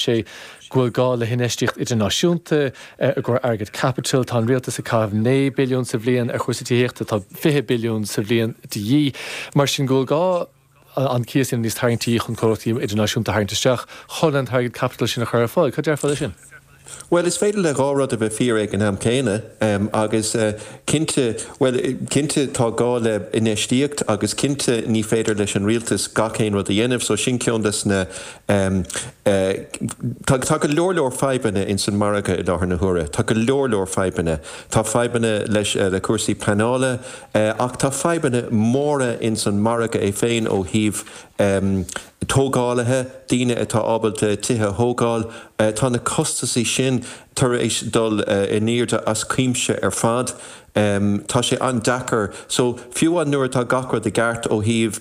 sé go bhfuil gá le hinfheistíocht idirnáisiúnta i gcomhair airgead caipitil. Tá an Rialtas ag caitheamh naoi billiún sa bhliain ar chúrsaí tithíochta, tá fiche billiún sa bhliain de dhíth. Mar sin go bhfuil gá an cíos a dhéanamh níos tarraingtí chun comhlachtaí idirnáisiúnta a tharraingt isteach chun an t-airgead caipitil sin a chur ar fáil. Cad déarfá le sin? Bhuel, is féidir le dhá rud a bheith fíor ag an am céanna. Agus cinnte, bhuel, cinnte tá gá le infheistíocht agus cinnte ní féidir leis an Rialtas gach aon rud a dhéanamh so sin ceann des na Em. eh. tá go leor leor fadhbanna ins an margadh i láthair na huaire. Tá go leor leor fadhbanna. Tá fadhbanna leis eh. le cúrsaí pleanála eh. ach tá fadhbanna móra ins an margadh é féin ó thaobh em. tógálaithe, daoine atá ábalta tithe a thógáil eh. tá na costasaí sin tar éis dul eh. in airde as cuimse ar fad. Em. tá sé an-deacair. So. fiú amháin nuair atá gach rud i gceart ó thaobh.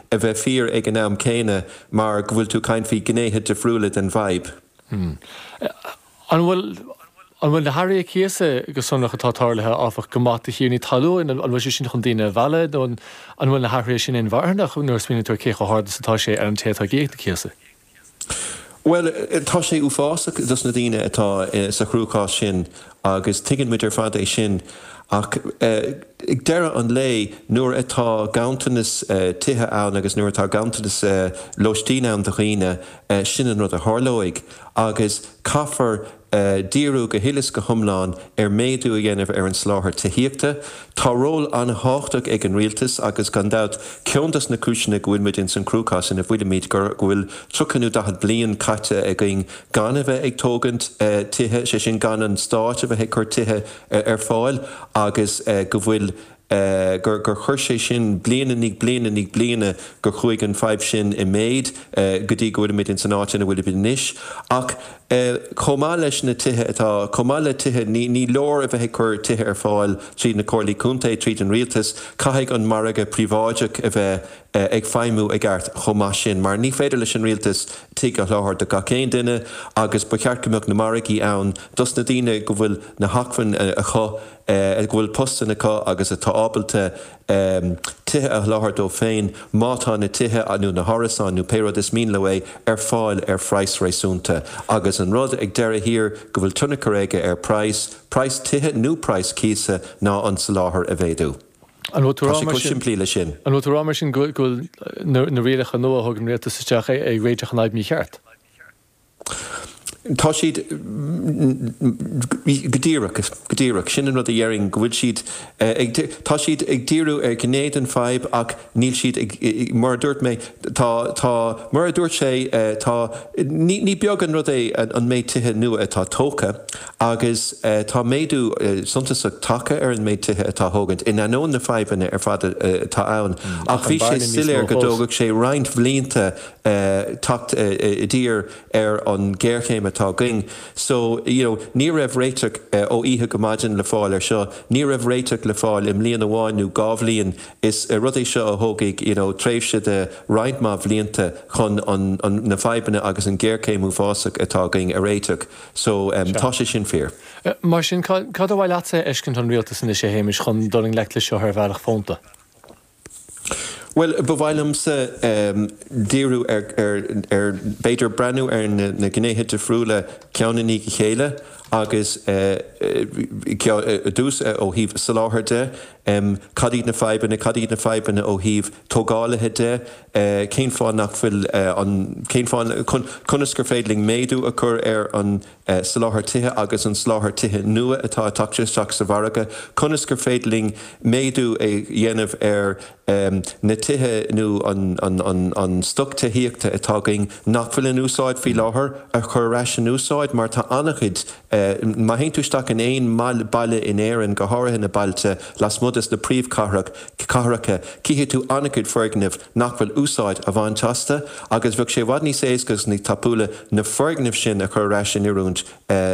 a bheith fíor ag an am céanna mar go bhfuil tú ag caint faoi gnéithe difriúla den bhfadhb. An bhfuil, an bhfuil na hathruithe cíosa go sonrach atá tarlaithe, áfach, go maith do thiarnaí talúin, an bhfuil sé sin chun daoine a mhealladh nó an bhfuil na hathruithe sin inmharthanach nuair a smaoiníonn tú ar cé chomh hard is atá sé ar an té atá ag íoc na cíosa? Bhuel, tá sé uafásach dos na daoine atá sa chruachás sin agus tuigeann muid ar fad é sin ach ag deireadh an lae nuair atá ganntanas tithe ann agus nuair atá ganntanas lóistín ann do dhaoine, sin an rud a tharlóidh agus caithfear díriú go huile is go hiomlán ar méadú a dhéanamh ar an soláthar tithíochta. Tá ról an-thábhachtach ag an Rialtas agus gan dabht ceann dos na cúiseanna go bhfuilimid ins an chruachás ina bhfuilimid go bhfuil tríocha nó daichead bliain caite againn gan a bheith ag tógaint tithe, sé sin gan an Stát a bheith ag cur tithe ar fáil agus go bhfuil eh, gur, gur chuir sé sin bliain i ndiaidh bliana i ndiaidh bliana gur chuaigh an fadhb sin i méid eh go dtí go bhfuilimid ins an áit ina bhfuilimid anois. Ach eh chomh maith leis na tithe atá, chomh maith le tithe, ní, ní leor a bheith ag cur tithe ar fáil tríd na Comhairlí Contae, tríd an Rialtas, caithfidh an margadh príobháideach a bheith eh ag feidhmiú i gceart chomh maith sin mar ní féidir leis an Rialtas tigh a sholáthar do gach aon duine agus ba cheart go mbeadh na margaí ann dos na daoine go bhfuil na hacmhainní acu, go bhfuil postanna acu agus atá ábalta tithe a sholáthar dóibh féin, má tá na tithe nó na hárasáin nó pé rud is mian leo é, ar fáil ar phraghas réasúnta. Agus an rud ag deireadh thiar go bhfuil tionchar aige ar praghas, praghas tithe nó praghas cíosa, ná an soláthar a mhéadú. Tá sé chomh simplí leis sin. An bhfuil tú ag rá mar sin go bhfuil na rialacha nua a thug an Rialtas isteach ag réiteach an fhadhb mícheart? Tá siad, go díreach, go díreach. Sin an rud a dhéarfainn, go bhfuil siad ag, tá siad ag díriú ar ghné den fadhb ach níl siad ag, mar a dúirt mé, tá, tá, mar a dúirt sé, tá, ní, ní beag an rud é an méid tithe nua atá tógtha agus tá méadú suntasach tagtha ar an méid tithe atá á thógaint in ainneoin na fadhbanna ar fad atá ann ach bhí sé soiléir go dtógfadh sé roinnt blianta teacht i dtír ar an géarchéim atá againn. So, you know, ní raibh réiteach ó oíche go maidin le fáil ar seo. Ní raibh réiteach le fáil i mbliain amháin nó dhá bhliain. Is rud é seo a thógfaidh, you know, tréimhse de roinnt mhaith bhlianta chun na fadhbanna agus an géarchéim uafásach atá againn a réiteach. So, tá sé sin fíor. Mar sin, cad ba mhaith leatsa a fheiscint ón Rialtas anois, a Shéamais, chun dul i ngleic le seo ar bhealach fónta? Bhuel, ba mhaith liomsa díriú ar, ar, b'fhéidir breathnú ar na gnéithe difriúla ceann i ndiaidh a chéile agus i dtús ó thaobh soláthair de, cad iad na fadhbanna, cad iad na fadhbanna ó thaobh tógálaithe de, cén fáth nach bhfuil an, cén fáth, conas gur féidir linn méadú a chur ar an, eh, soláthar tithe agus an soláthar tithe nua atá a' teacht isteach sa mhargadh, conas gur féidir linn méadú a dhéanamh ar, em, na tithe nó an, an, an, an stoc tithíochta atá againn nach bhfuil in úsáid faoi láthair a chur ar ais in úsáid mar tá ana-chuid, eh, má théann tú isteach in aon mbaile, baile in Éirinn, go háirithe na bailte lasmuigh de sna príomhchathrach, cathracha, cífidh tú ana-chuid foirgneamh, nach bhfuil úsáid á bhaint asta agus bheadh sé i bhfad níos éasca agus níos tapúla na foirgnimh sin a chur ar ais in oiriúint